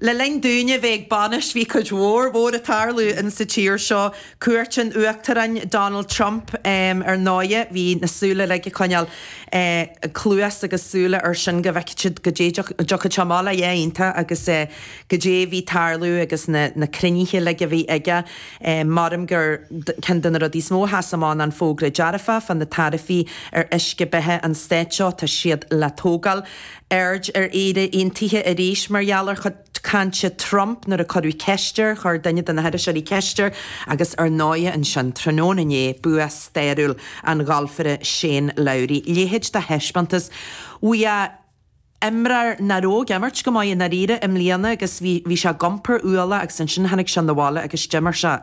Le linn dúinne bheith ag bainis bhí cuid mhór mhór ag tarlú in sa tír seo, cuairt an Uachtaráin Donald Trump ar ndóighe, bhí na súile uilig ag coinneáil cluas agus súile ar sin go bhfeicfeadh siad goidé a dtiocfadh sé amach leis, yeah iontach agus goidé a bhí ag tarlú agus na na cruinnithe uilig a bhí aige, creidim gur ceann de na rudaí is mó a sheas amach ná an fógra dearfach fá na taraifí ar uisce beatha an Stáit seo, tá siad le tógáil. Aird ar Éire Aontaithe arís mar gheall ar chuid cainte Trump nuair a cuireadh ceist air, chuir duine de na hiriseoirí ceist air agus ar ndóigh ansin tráthnóna inné, bua stairiúil an ghalfaire Shane Lowry. Leithéid de thaispeántas. Bhí a imreoir nach raibh ag imirt go maith i ndáiríre i mbliana agus bhí sé ag iompar ualaigh agus ansin tháinig sé na bhaile agus d'imir sé.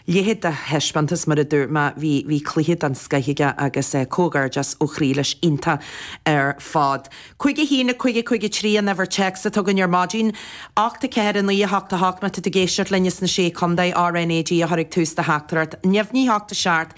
leithéid de thaispeántas, mar a dúirt mé, bhí, bhí cluiche den scoith aige agus comhghairdeas ó chroí leis, iontach ar fad. Cúig a haon, a cúig, a cúig a trí an uimhir téacs atá againn ar maidin. Ocht a ceathair, a naoi a hocht, a hocht má tá tú ag éisteacht linn as na Sé Chontae, RNAG a chur ag tús do theachtaireacht. Neamhní hocht a seacht,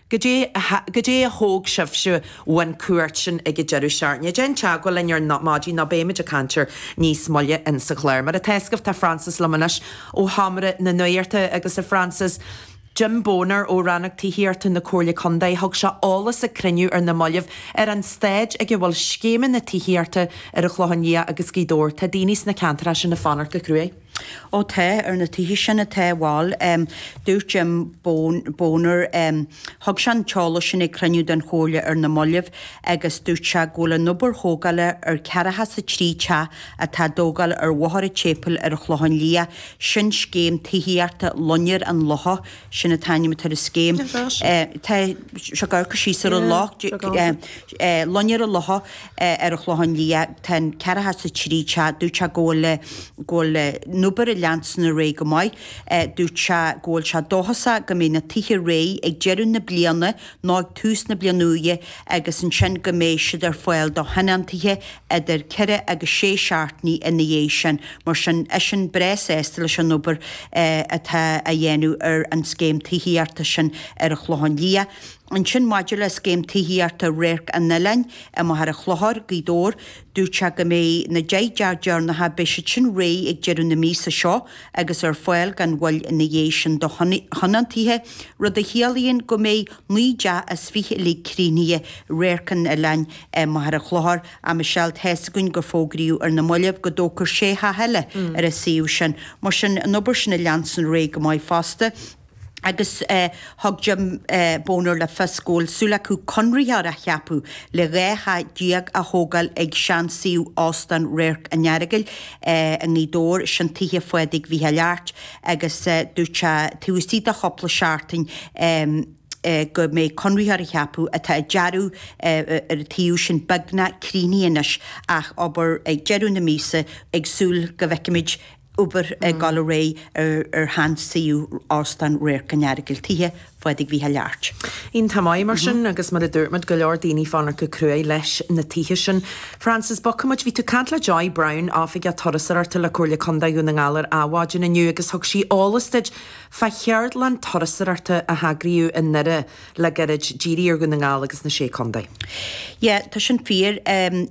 Cad é a thóg sibhse ón chuairt sin ag an deireadh seachtaine? Déan teagmháil linn ar maidin nó beimid ag caint air níos moille in sa chlár. Mar atá scaifte tá Frances liom anois ó Sheomra na Nuachta agus a Frances, Jim Boner ó Rannóg Tithíochta na Comhairle Contae thug sé eolas ag cruinniú ar na mallaibh ar an stáid ag a bhfuil scéimeanna tithíochta ar an Chlochán Liath agus Gaoth Dobhair. Tá daoine sna ceantair sin ag fanacht go cruaidh. Ó tá, ar na tithe sin tá. Bhuel, dúirt Jim Boner, thug sé an t-eolas sin ag cruinniú den Chomhairle ar na mallaibh agus dúirt sé go bhfuil an obair thógála ar 43 teach atá á dtógáil ar Bhóthar an tSéipéil ar an Chlochán Liath. Sin scéim tithíochta Loinnir an Locha, sin an t-ainm atá ar an scéim. Tá sé ag amharc síos ar an loch, Loinnir an Locha. ar an Chlochán Liath tá an ceathracha is a trí teach, dúirt sé go bhfuil go bhfuil an obair ag leanstan ar aghaidh go maith dúirt sé go bhfuil sé dóchasach go mbeidh na toithe réidh ag deireadh na bliana nó ag tús na bliana úire agus ansin go mbeidh siad ar fáil do thionóntaithe idir ceithre agus sé seachtainí ina dhiaidh sin mar sin eisean breá sásta leis an obair atá á dhéanamh ar an scéim tithíochta sin ar an Chlochán Liath. Ansin maidir le scéim tithíochta Radharc an Oileáin i Machaire Chlochair, Gaoth Dobhair, dúirt sé go mbeidh na deich dteach deireanacha, beidh siad sin réidh ag deireadh na míosa seo agus ar fáil gan mhoill ina dhiaidh sin do thionóntaithe, rud a chiallaíonn go mbeidh naoi dteach as fiche uilig críochnaithe i Radharc an Oileáin i Machaire Chlochair am a seal. Tá's againn gur fógraíodh ar na mallaibh go dtógfar sé theach eile ar an suíomh sin, mar sin an obair sin ag leanstan ar aghaidh go maith fosta. agus thug Jim Bonar le fios go bhfuil súil acu conraitheoir a cheapadh le dhá theach déag a thógáil ag seansuíomh Óstán Radharc an Earagail i nGaoth Dobhair, sin tithe Phádraig Mhicheáil Airt, agus dúirt sé taobh istigh de chúpla seachtain go mbeidh conraitheoir á cheapadh, tá an dearadh ar an tsuíomh sin beagnach críochnaithe anois ach obair ag deireadh na míosa ag súil go bhfeicfimid obair ag dul ar aghaidh ar sheansuíomh Óstán Radharc an Earagail, tithe Phádraig Mhícheáil Airt. Iontach maith, mar sin, agus mar a dúirt muid, go leor daoine ag fanacht go cruaidh leis na tithe sin. Frances bogfaimid, bhí tú ag caint le Joy Browne, Oifigeach Turasóireachta le Comhairle Condae Dhún na nGall ar Adhmhaidin inniu agus thug sí eolas duit fá cheardlann turasóireachta a heagraíodh i nDoire le gairid, dírithe ar Dhún na nGall agus na Sé Contae. Yeah, tá sin fíor.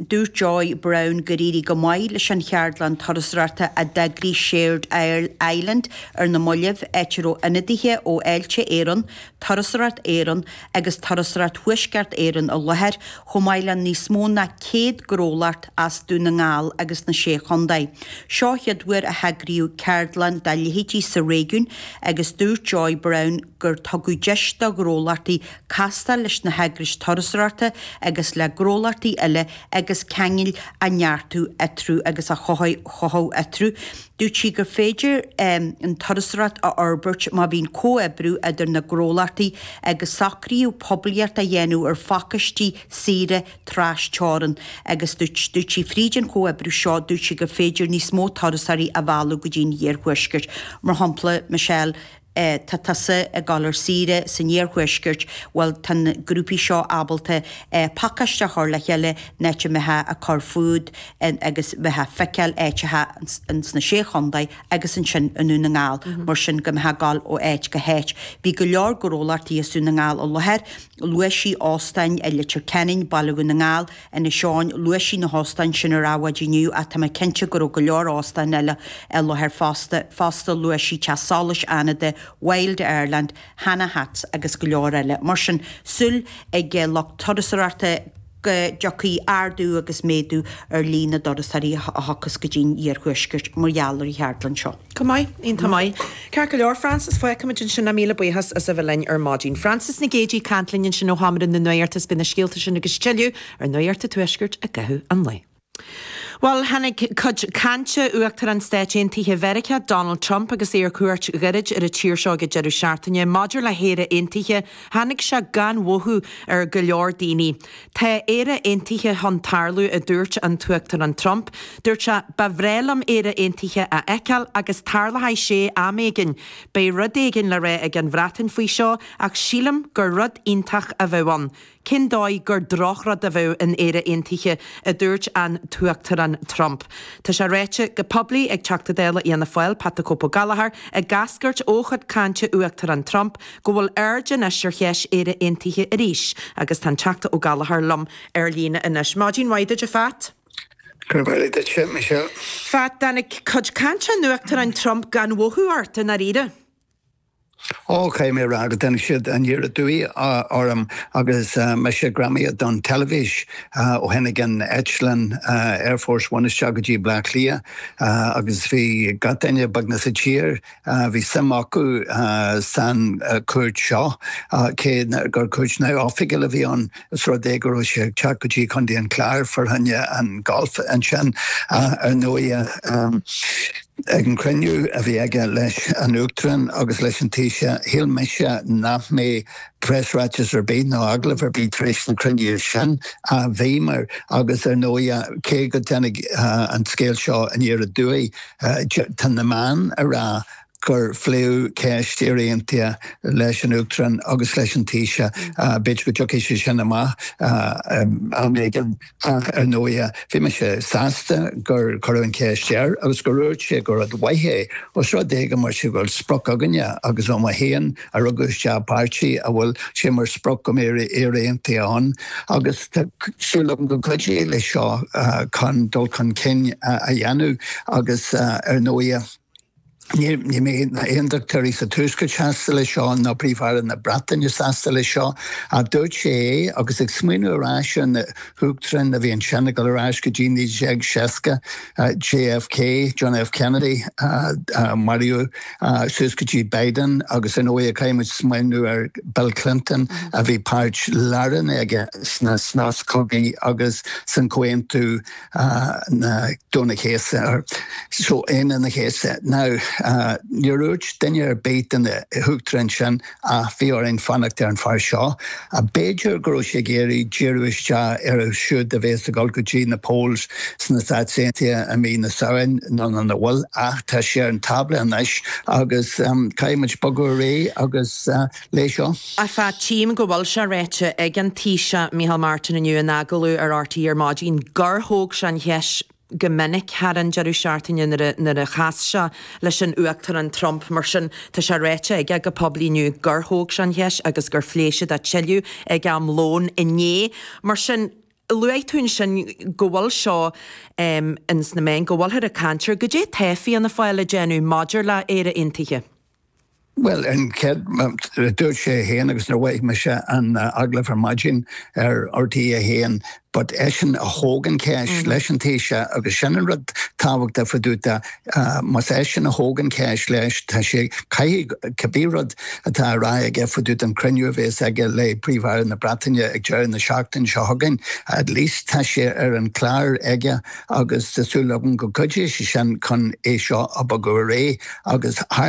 Dúirt Joy Browne gur éirigh go maith leis an cheardlann turasóireachta a d'eagraigh Shared Island ar na mallaibh, áit a raibh ionadaithe ó Fháilte Éireann, Turasóireacht Éireann agus Turasóireacht Thuaisceart Éireann i láthair, chomh maith le níos mó ná 100 gnólacht as Dún na nGall agus na Sé Chontae. Seo an chéad uair a heagraíodh ceardlann dá leithéid sa réigiún agus dúirt Joy Browne, gur tugadh deis do ghnólachtaí castáil leis na heagrais turasóireachta agus le gnólachtaí eile agus ceangail a neartú eatarthu agus a chothú eatarthu. Dúirt sí gur féidir an turasóireacht a fhorbairt má bhíonn comhoibriú idir na gnólachtaí agus socraíodh poiblíocht a dhéanamh ar phacáistí saoire tras-teorann agus dúirt sí fríd an chomhoibriú seo dúirt sí gur féidir níos mó turasóirí a mhealladh go dtí an iarthuaisceart, mar shampla Michelle. tá tusa ag dul ar saoire san iarthuaisceart, bhuel tá na grúpaí seo ábalta pacáiste a chur le chéile, an áit a mbeifeá ag cur fút agus bheifeá ag feiceáil áiteacha ins na Sé Chontae agus ansin i nDún na nGall, mar sin go mbeifeá ag dul ó áit go háit. Bhí go leor gnólachtaí as Dún na nGall i láthair, luaigh sí óstáin i Leitir Ceanainn, Baile Dhún na nGall, Inis Eoghain, luaigh sí na hóstáin sin ar Adhmhaidin inniu ach tá mé cinnte go raibh go leor óstáin eile i láthair fosta, fosta luaigh sí Teach Solais Fhánada, Wild Ireland, Hanna Hats agus go leor eile. Mar sin súil ag lucht turasóireachta go dtiocfaidh ardú agus méadú ar líon na dturasóirí a thiocfas go dtí an iarthuaisceart mar gheall ar an cheardlann seo. Go maith, iontach maith. Ceart go leor, Frances, fágfaimid ansin é, míle buíochas as a bheith linn ar maidin. Frances Nic Géidigh ag caint linn ansin ó Sheomra na Nuachta agus beidh na scéalta sin agus tuilleadh ar Nuacht an Tuaiscirt i gcaitheamh an lae. Bhuel, tháinig cuid cainte Uachtarán Stáit Aontaithe Mheiriceá, Donald Trump agus é ar cuairt ghairid ar an tír seo ag an deireadh seachtaine. Maidir le hÉire Aontaithe, tháinig sé gan mhothú ar go leor daoine. Tá Éire Aontaithe chun tarlú, a dúirt an tUachtarán Trump. Dúirt sé, Ba bhreá liom Éire Aontaithe a fheiceáil agus tarlóidh sé am éigin. Beidh rud éigin le rá ag an Bhreatain faoi seo ach sílim gur rud iontach a bheadh ann. Cén dóigh gur drochrud a bheadh in Éire Aontaithe? a dúirt an tUachtarán Trump. Tá sé ráite go poiblí ag Teachta Dála Fhianna Fáil, Pat the Cope Ó Gallchóir, ag eascairt ó chuid cainte Uachtarán Trump, go bhfuil aird anois ar cheist Éire Aontaithe arís agus tá an Teachta Ó Gallchóir liom ar líne anois. Maidin mhaith duit, a Phat. Gurb amhlaidh duitse, a Michelle. Phat, tháinig cuid cainte an Uachtaráin Trump gan mhothú ort, i ndáiríre? Ó, caithfidh mé a rá go dtáinig siad aniar aduaidh orm agus mise greamaithe don teilifís ó tháinig an eitleán Air Force One isteach go dtí Bleá Cliath agus bhí gach duine, beagnach, sa tír Bhí suim acu san cuairt seo cé gur cuairt neamh-oifigiúil a bhí ann. Os rud é go raibh sé ag teacht go dtí Contae an Chláir fá choinne an golf ansin ar ndóighe. Ag an chruinniú a bhí aige leis an Uachtarán agus leis an Taoiseach shíl mise nach mbeadh preasráiteas ar bith nó agallamh ar bith tar éis an chruinniú sin. Bhíomar agus ar ndóighe cé go dtáinig an scéal seo aniar aduaidh, Tá na meáin ag rá gur pléadh ceist Éire Aontaithe leis an Uachtarán agus leis an Taoiseach. B'fhéidir go dtiocfaidh sé sin amach am éigin ach ar ndóighe bhí mise sásta gur cuireadh an cheist air agus gur úirt sé gur rud mhaith é os rud é go mbeidh sé go bhfuil sprioc againne agus ó mo thaobh a rugadh isteach i bpáirtí a bhfuil sé mar sprioc go mbeidh Éire Aontaithe ann agus tá súil agam go gcuideoidh leis seo chun dul chun cinn a dhéanamh agus ar ndóighe ní bheidh na hAontachtóirí sa Tuaisceart sásta leis seo ná Príomh-Aire na Breataine sásta leis seo. Ach dúirt sé é agus ag smaoineamh ar ais ar na hUachtaráin a bhí ansin ag dul ar ais go dtí 1960, JFK, John F. Kennedy, maraíodh, suas go dtí Biden agus ar ndóigh caithfidh muid smaoineamh ar Bill Clinton a bhí páirt lárnach aige sna cogaí agus san comhaontú Aoine an Chéasta Aoine an Chéasta. Now níor úirt duine ar bith de na huachtaráin sin ach bhí orainn fanacht ar an fear seo. B'fhéidir go raibh sé ag iarraidh díriú isteach orthu siúd a bheas ag dul go dtí na polls sna Stáit Aontaithe i mí na Samhain, nó an bhfuil? Ach tá sé ar an tábla anois agus caithfidh muid bogadh ar aghaidh leis seo. A Phat, tchím go bhfuil sé ráite ag an Taoiseach Micheál Martin inniu in agallamh ar RTÉ ar maidin gur thóg sé an cheist, go minic thar an deireadh seachtaine nuair a chas sé leis an Uachtarán Trump. Mar sin, tá sé ráite aige go poiblí inniu gur thóg sé an cheist agus gur phléigh siad é tuilleadh ag am lóin inné. Mar sin, luaigh tú ansin go bhfuil seo ins na meáin, go bhfuilthear ag caint air. Goidé atá Fianna Fáil a déanamh maidir le Éire Aontaithe? Bhuel, an chéad rud a dúirt sé fhéin agus nuair a mhoithigh mise an agallamh ar maidin ar RTÉ 1, but eisean a thóg an cheist leis an Taoiseach agus sin an rud tábhachtach fá dtaobh de, más eisean a thóg an cheist leis, tá sé, caithfidh cibé rud atá á rá aige fá dtaobh den chruinniú a bhéas aige le Príomh-Aire na Breataine ag deireadh na seachtaine seo chugainn, at least tá sé ar an chlár aige agus tá súil agam go gcuideoidh sé sin chun é seo a bhogadh ar aghaidh agus thar